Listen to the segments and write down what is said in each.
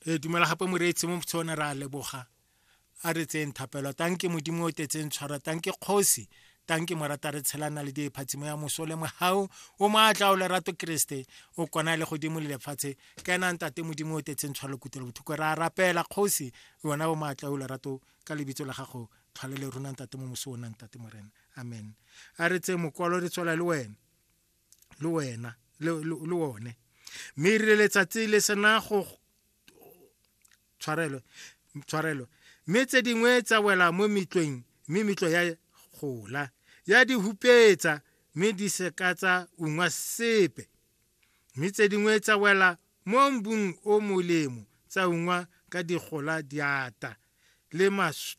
re dumela gape moreetsi mo tsone re a leboga a re tseyeng thapelo tanke modimo o tetseng tshwara tanke kgosi tanke morata re tshelana le diphatsimo ya moso le mogau o maatla o lerato keresete o kona le godimo le lefatshe ka ena ntate modimo o tetseng tshwara lekutelo bothoko re a rapela kgosi yona o maatla o lerato ka lebitso la gago tlhwale le rona ntate mo moso o nang tate morena amen a re tse mokwalo re tswela le wena le wena le, le, le one mme e rile letsatsi le sena go tshwarelo tshwarelo mme tse dingwe tsa wela mo metlweng mme metlo ya gola ya di hupetsa mme di seka tsa ungwa sepe mme tse dingwe tsa wela mo mbung o molemo tsa ungwa ka digola diata le mas,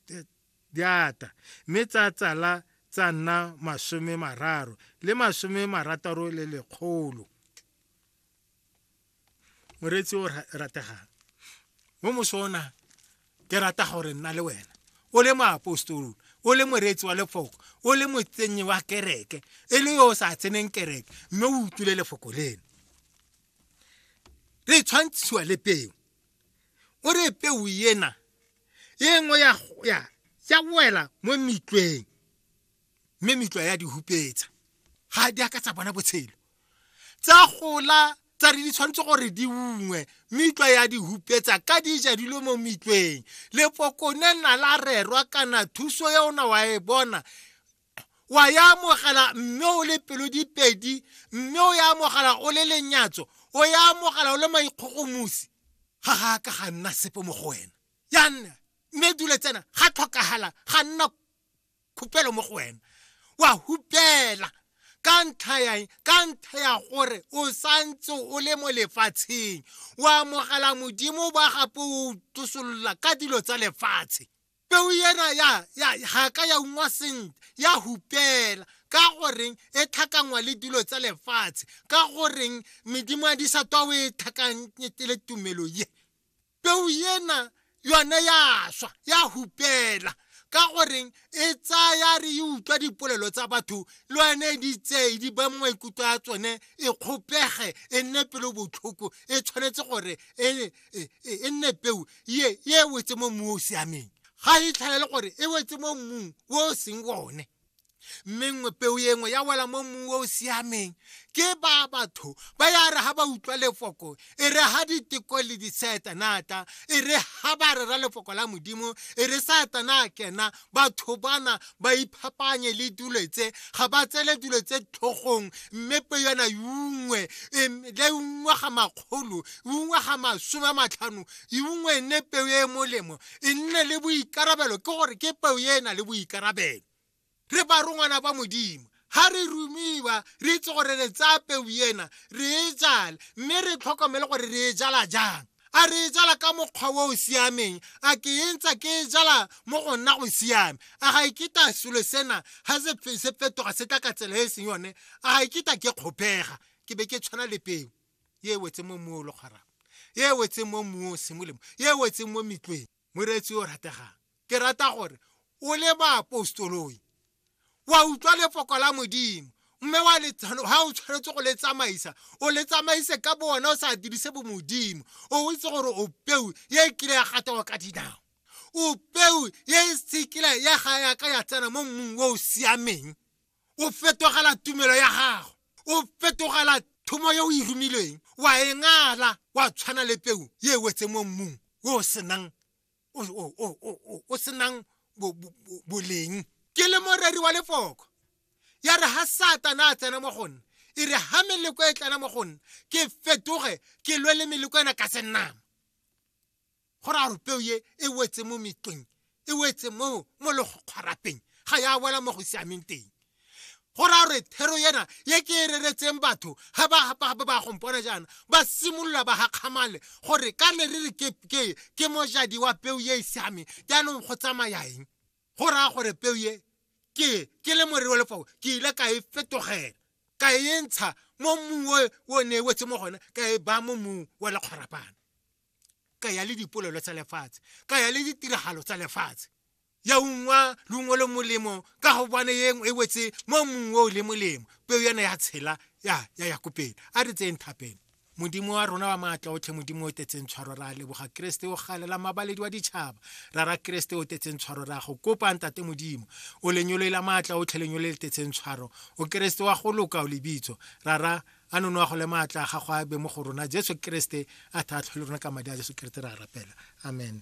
di ata, mme tsa tsala tsa nna masome mararo le masome marataro le lekgolo. Moreetsi o rategang mo mosona ke rata gore nna le wena o le moapostolo o le moreetsi wa lefoko o le motsenyi wa kereke e le yo o sa tseneng kereke mme o utlwile lefoko leno le tshwantshiwa le peo o re peo ena e nngwe ya ya ya wela mo metlweng mme metlwa ya di hupetsa ga di a ka tsa bona botshelo tsa gola tsa re di tshwanetse gore di ungwe metlwa ya di hupetsa ka di ja dilo mo metlweng lepokone na la rerwa kana thuso ya ona wa e bona wa ya amogela mme o le pelo dipedi mme o ya amogela o le lenyatso o ya amogela o le maikgogomosi ga ga ka ga nna sepe mo go wena ya nna mme dule tsena ga tlhokagala ga nna khupelo mo go wena wa hupela ka ntlha ya ka ntlha ya gore o santse o le mo lefatsheng o amogela modimo ba gape o tosolola ka dilo tsa lefatshe peo ena ya ya ga ka ya ungwa sentle ya hupela ka goreng e tlhakangwa le dilo tsa lefatshe ka goreng medimo ya disatwa o e tlhakanyetele tumelo ye peo ena yone ya swa ya hupela ka goreng e tsaya re e utlwa dipolelo tsa batho le yone di tseye di ba maikutlo a tsone e kgopege e nne pelo botlhoko e tshwanetse gore e e, e, e nne peu ye ye e wetse mo mmung o o siameng ga e tlhaele gore e wetse mo mmung o o seng one mme nngwe peo ye nngwe ya wela mo mmung o o siameng ke ba batho ba ya re ga ba utlwa lefoko e re ga diteko le disetanata e re ga ba rera lefoko la modimo e re satana kena batho bana ba iphapanye le dilo tse ga ba tsele dilo tse tlhogong mme pe yona yungwe le ungwe ga makgolo ungwe ga masome a matlhano ungwe e nne peo e e molemo e nne le boikarabelo ke gore ke peo e e na le boikarabelo re ba rongwana ba modimo ga re rumiwa re itse gore re tsaya peu ena re e jale mme re tlhokomele gore re e jala jang a re e jala ka mokgwa o o siameng a ke e ntsa ke e jala mo go nna go siame a ga iketa e selo sena ga se fetoga se tla ka tsela e e seng yone a ga iketa e ke kgopega ke be ke tshwana le peo e wetse mo mmu o le kgwarang e wetseng mo mmung o sengwe le mo e wetseng mo metlweng moreetsi o rategang ke rata gore o le baapostoloi wa utlwa lefoko la modimo mme wa le ha o tshwanetse go le tsamaisa o le tsamaise ka bo wena o sa dirise bo modimo o itse gore o peu ye e kile ya gatawa ka dinao o peu ye e sekile ya ga yaka ya tsena mo mmung o o siameng o fetogela tumelo ya gago o fetogela thomo yo o e romilweng wa e ngala wa tshwana le peu ye e wetse mo mmung o senang o senang boleng ke le moreri wa lefoko ya re ha satana a tsena mo go nna e re ha meleko e tlana mo go nna ke fetoge ke lwe le meleko ena ka senama go raya gore peo ye e wetse mo metleng e wetse mo mo legokgwarapeng ga ya wela mo go siameng teng go raya gore thero yena ye ke e reretseng batho ga ba ba gompona jaana ba simolola ba gakgamale gore ka ne re re ke mojadi wa peo ye e siameng jaanong go tsamaya eng go raya gore peo ye ke ke le morero wa lefao ke ile ka e fetogela ka e ntsha mo mmung o ne e wetse mo gone ka e baya mo mmung wa lekgwarapana ka ya le dipolelo tsa lefatshe ka ya le ditiragalo tsa lefatshe ya ungwa lungwe le molemo ka go bone yeng e wetse mo mongwe o le molemo peo yana ya tshela ya ya ya kopele a re tseng thapeng modimo wa rona wa maatla otlhe modimo o tetseng tshwaro ra leboga keresete o galela mabaledi wa ditšhaba ra ra keresete o tetseng tshwaro ra go kopa ntate modimo o lenyoloela maatla otlhe lenyolo le tetseng tshwaro o keresete wa go loka o lebitso ra ra a nono a gole maatla a gago a be mo go rona jesu keresete a tlhatlhwe le rona ka madi a jesu keresete ra rapela amen